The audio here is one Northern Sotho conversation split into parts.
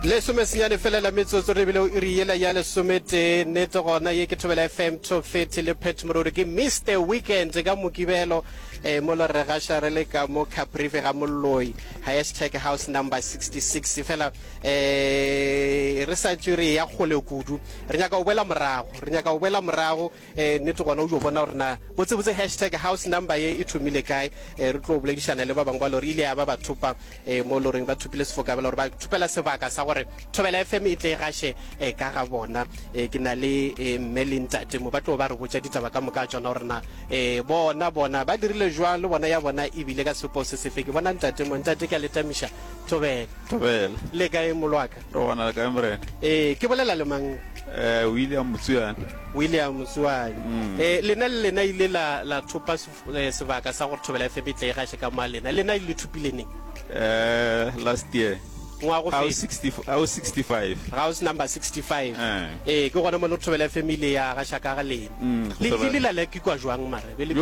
lesome senyane felela metsotso re bile o iri yela ya lesometee nete gona ye ke thobela fm tofeti le pet morori ke mr weekend ka mokibelo um eh, mo lo re gaša re le ka mo caprive ga molloi hashtag house number 66 fela um re sa tswe re ya kgole kudu re nyaka go boela morago re nyaka go boela morago E, nnete gona o jo bona gore na botsebotse hashtag house number ye e thomile kae e, re tlo boledišana le ba bangwe ba lore ile ya ba ba thopa e, mo loreng ba thopile sefokabela gore ba thopela sebaka sa gore thobela fm e tle e gaše e, ka ga bona e, ke na le e, mme le ntate mo ba tlo ba re botša ditaba ka moka tsona gore na e, bona bona ba dirile jwang le bona ya bona e bile ka sepo se sefe ke bona ntate mo ntate ke a letamiša thobela thobela le kae molwaka Re gona le kae morena? Ee, ke bolela le mang? Eh, William Motsuane. William Motsuane. Mm. Eh, lena le lena ile la la thopa eh, sebaka sa gore thobela FM e tle e gaše ka moa lena. Lena le thopile neng? Eh, last year. Ngwa go fe? 60 au 65. Ga o se number 65. Eh. eh, ke gona mo le thobela FM e ile ya gaša ka ga lena. Mm, le ile la lekikwa jwang mara? Be le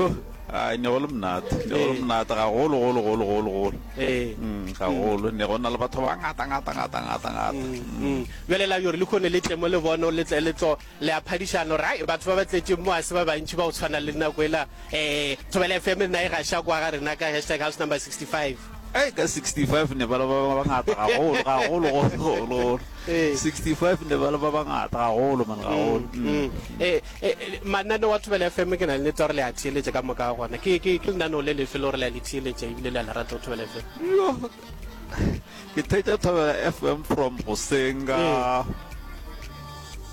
Ai, ne go le monate, ne go le Ee. monate gagolo, golo, golo, golo, golo. Ee. Mm, gagolo, ne go na le batho ba ngata, ngata, ngata, ngata, ngata. Mm. bjale la yore le kgone le tle mo le bone le tle le tlo le a phadišana gore ai batho ba ba tletšeng mo a se ba bantši ba go tshwana le nako ela um thobela fm nna e gaša kwa ga rena ka hashtag house number 65 Ka 65 ne ba le ba bangata gagolo, gagolo, gagolo, gagolo. 65 ne ba le ba bangata gagolo, man, gagolo. Mm. Mm. E, e, e, mananeo wa thobela fm ke na le nete gore le a theeletša ka moka ga gona ke ke- ke lenaneo le lefe le gore le a le theeletša ebile le a le rata go thobela fm Yo, ke thetša thobela FM from goseng ka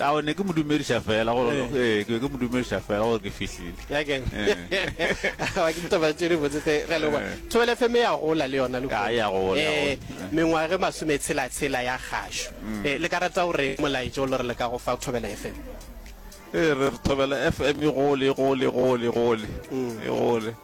Ao, ne ke mo dumediša fela gore eh. ee ke be ke mo dumediša fela gore ke fihlile yakeng ga eh. ke ditaba tše di botse tse re lengwe eh. thobele fm ya gola le yona a ya gola mengwage masome tshela tshela ya gašo mm. le ka rata gore molaetso lo re le ka go fa thobela fm ee re thobela fm e gole e gole e gole e gole mm. e gole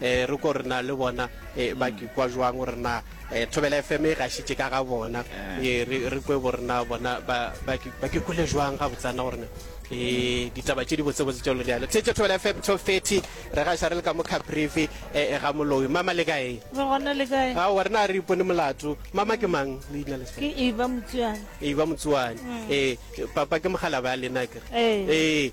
E re ko re na le bona e, ba ke kwa jwang gore na e, thobela fm e gašitše ka ga bona e, re, re kwe gore na bona ba, ba, ke, ba ke kwele jwang ga botsana gore na e, ditaba tše di botsebotse tša lone yalo theetše thobela fm 1230 re gaša re le ka mo caprivi e, e, ga moloi mama le kae re gona le kae ao re na re ipone molato mama ke mang leina le ke eba motsuane e ba motsuane e papa ke mogala ba lena kere Ee. e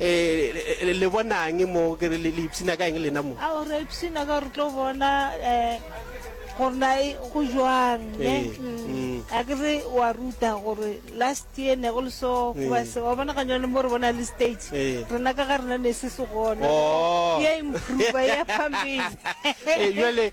Ee, le bonang mo, ke re le ipshina ka eng lena mo? Ao, re ipshina ka gore tlo bona um gore na e go jwang, ne? A ke re wa ruta gore last year ne go le so, goba se, wa bona ganyone mo re bona le stage, rena ka ga rena ne se se gona, ya improver, ya phampele. Ee, jwale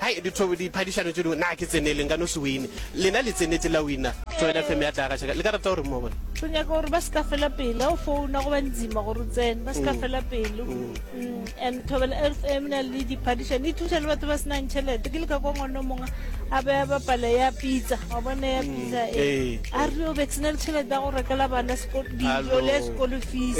Hai dithobo di phadišano tše dingwe naa ke tsenele nka no se wine lena le tsenetše la wina. Join FM ya tla gaša ka le ka rata gore mo bona. Tlo nyaka gore ba se ka fela pele ha o founa go ba nzima gore o tsene ba se ka mm. fela pele. Mm. Mm. And Thobela FM na le diphadišano e thuša le batho ba se nang tšhelete ke le ka kwa ngwana mongwe a be a bapala ya pizza wa bona ya pizza e eh. a re o be se na le tšhelete ya go rekela bana dijo le ya sekolo fees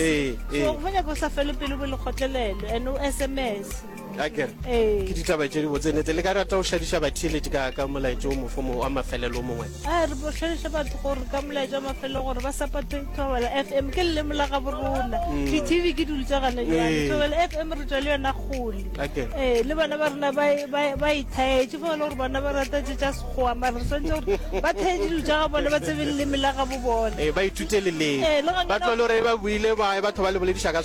so go nyaka o sa fele pele bo lekgotlelelo and o SMS. a kere Ee. ke ditaba tše di botsenetse le ka rata go šadiša batheeledi ka ka molaetša o mofo mo- wa mafelelo o mongwe a re bohlaleša batho gore ka molaetša wa mafelelo gore ba sapate thobela f m ke leleme la gabo rona di-tv ke dilo tsa gana jale Ee. thobela f m re tswa le yona kgole Okay. ee le bana ba rena ba e- ba e- ba ithaetse fa e le gore bana ba rata tse tsa sekgowa mare re swantse gore ba thae dilo tsa ga bone ba tsebe leleme la gabo bone ee ba ithute leleng Ee, le gona- ba tlole gore ba buile ba batho ba le bolediša ka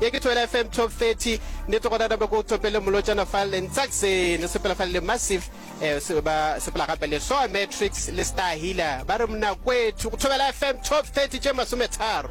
Ye ke Tshwela FM Top 30 ne to gona nabo go topele molotšana fa le ntsakse ne sepela fa le massive eh, se ba sepela gape le Soa Matrix le Star Healer ba re mna kwethu go Tshwela FM Top 30 tše masome tharo